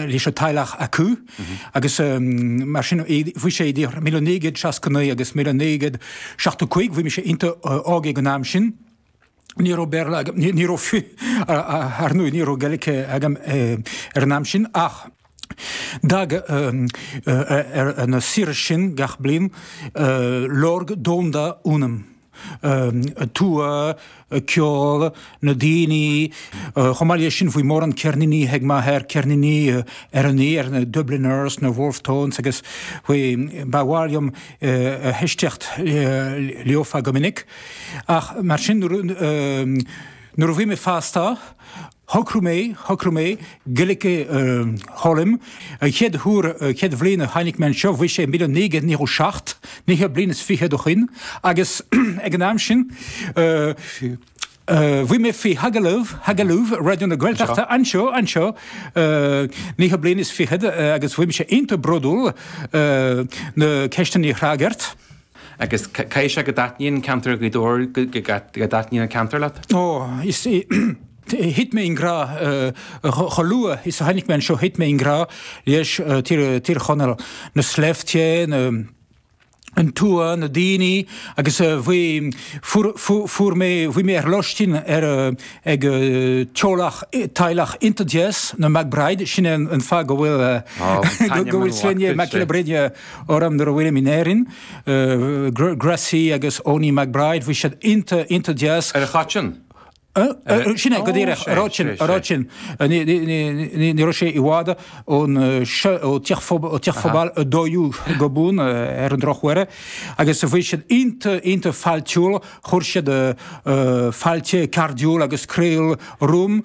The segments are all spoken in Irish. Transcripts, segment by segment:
leis an teaghlach acu agus mar sin bhí sé idir 1969 agus 1975 bhí mé iontach óg ag an am sin. Ní raibh Béarla agam, ní raibh ar ndóigh, ní raibh Gaeilge agam ag an am sin ach d'fhág na saoire sin gach bliain lorg domhain ionam. an tuath, ceol, na daoine. Chomh maith leis sin bhí mórán ceirníní ag m'athair, ceirníní ar na ar, na Dubliners, na Wolfe Tones agus ba mhaith liom éisteacht leofa go minic. Ach mar sin nuair a bhí mé fásta, Shocraigh mé, shocraigh mé, Gaeilge eh, a fhoghlaim, an chéad huair, an chéad bhliain a tháinig mé anseo, bhí sé i míle naoi gcéad nócha seacht, naoi mbliana is fichead ó shin, agus ag an am sin, eh, bhí mé faoi agallamh, agallamh, Raidió na Gaeltachta, anseo, anseo, eh, naoi mbliana is fichead, agus bhí mise iontach bródúil, eh, na ceisteanna a fhreagairt, Agus caithfidh sé go dtaitníonn an ceantar Ghaoth Dobhair go dtaitníonn an ceantar leat? Ó, is, thit mé i ngrá, chomh luath is a tháinig mé anseo thit mé i ngrá le Tír Chonaill, na sléibhte, an tuath, na daoine agus bhí, fuair, fuair mé, bhí mé ar lóistín ar, ag teaghlach, teaghlach iontach deas, na McBride, sin é an fáth go bhfuil, go bhfuil sloinne McBride. Orm nuair a bhfuilim in Éirinn. Gracie agus Eoinín McBride, bhí siad iontach, iontach deas. Ar an chath sin? Sin é, go díreach, a rud sin, a rud sin. Ní raibh sé i bhfad ón Teach Pobail a dóú go bun, ar an drochuair, agus bhí siad iontach, iontach fáilteach. Chuir siad fáilte chairdiúil agus chroíúil romham.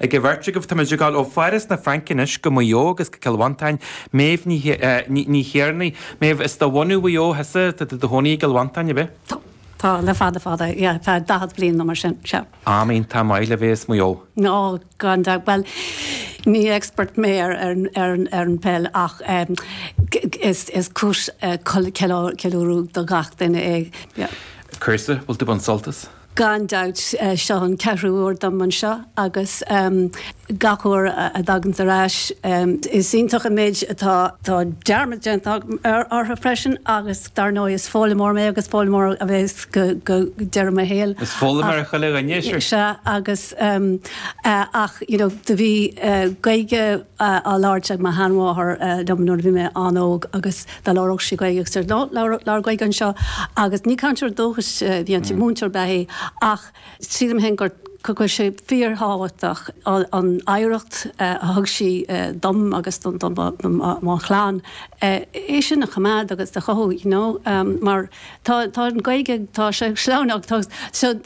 Ag an bheirt agaibh, táimid ag dul ó Pháras na Fraince anois go Maigh Eo agus go Cill Mhantáin. Méabh Ní Thiarnaigh. Méabh, is de bhunadh Mhaigh Eo thusa, tá tú i do chónaí i gCill Mhantáin, ab ea? Tá. Tá le fada fada, yeah, feadh daichead bliain nó mar sin, sea. Am iontach maith le bheith as Maigh Eo. Ó, gan dabht. Bhuel, ní expert mé ar an pheil ach is cúis ceiliúradh do gach duine é. Cúrsa, bhfuil tú baint sult as? Gan dabht, seo an ceathrú uair dom anseo agus gach uair a thagaimse ar ais, is iontach an méid atá. Tá dearmad déanta agam orthu freisin agus dar ndóigh is foghlaimeoir mé agus foghlaimeoir a bheas go deireadh mo shaoil. Is foghlaimeoir achan dhuine, is ea. Sea agus ach you know do bhí Gaeilge á labhairt ag mo sheanmháthair liom nuair a bhí mé an-óg agus. Dá labhródh sí Gaeilge agus deir Ná labhair Gaeilge anseo agus ní cainteoir dúchais a bhí inti, múinteoir ab ea í ach sílim féin gur go bhfuil sé fíorthábhachtach an oidhreacht a thug sí dom agus do mo chlann, é sin a choimeád agus a chothú you know mar tá an Gaeilge, tá sé sleamhnán tá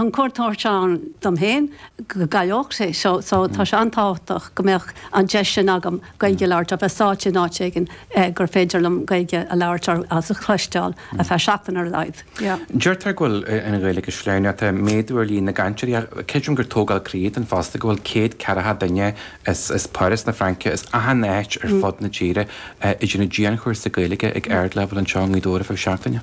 an chontúirt ann dom féin go gcaillfí é so tá sé an-tábhachtach go mbeadh an deis sin agam. Gaeilge a labhairt, a bheith sáite in áit éigin gur féidir liom Gaeilge a labhairt agus a chloisteáil ar feadh seachtain ar a laghad. Yeah. Deirtear go bhfuil an Ghaeilge sléachtha, ach tá méadú ar líon na gcainteoirí. Ach creidim gur tógáil croí atá ann fosta go bhfuil céad ceathracha duine as Páras na Fraince, as achan áit ar fud na tíre, ag déanamh dianchúrsa Gaeilge ag ardleibhéal anseo i nGaoth Dobhair ar feadh seachtaine.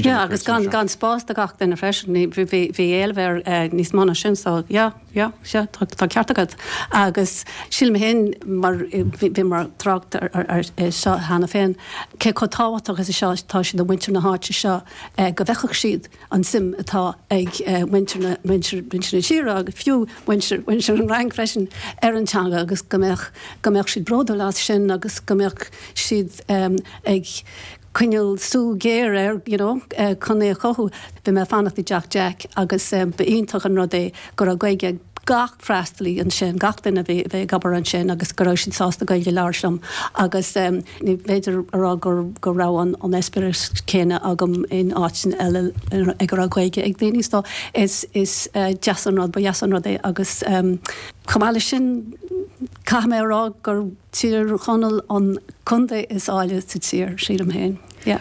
Yeah, agus gan spás do gach duine freisin. Bhí éileamh ar níos mó ná sin, so yeah. Sea, sea, tá ceart agat. Agus sílim féin, mar bhíomar ag trácht ar seo cheana féin, cé chomh tábhachtach is atá sé do mhuintir na háite seo go bhfeicfeadh siad an suim atá ag muintir na tíre agus fiú muintir an Fhrainc freisin ar an teanga agus go mbeadh siad bródúil as sin agus go mbeadh siad ag coinneáil súil géar air you know chun é a chothú. Bhí mé ag fanacht i dteach Jack agus ba iontach an rud é go raibh Gaeilge ag gach freastalaí ansin, gach duine a bhí a bhí ag obair ansin agus go raibh siad sásta Gaeilge a labhairt liom agus ní féidir a rá gur go raibh an an eispéireas céanna agam in áiteanna eile ag a raibh Gaeilge ag daoine so is is deas an rud ba dheas an rud é agus chomh maith leis sin Caithfidh mé a rá gur Tír Chonaill an contae is áille sa tír, sílim féin. Yeah.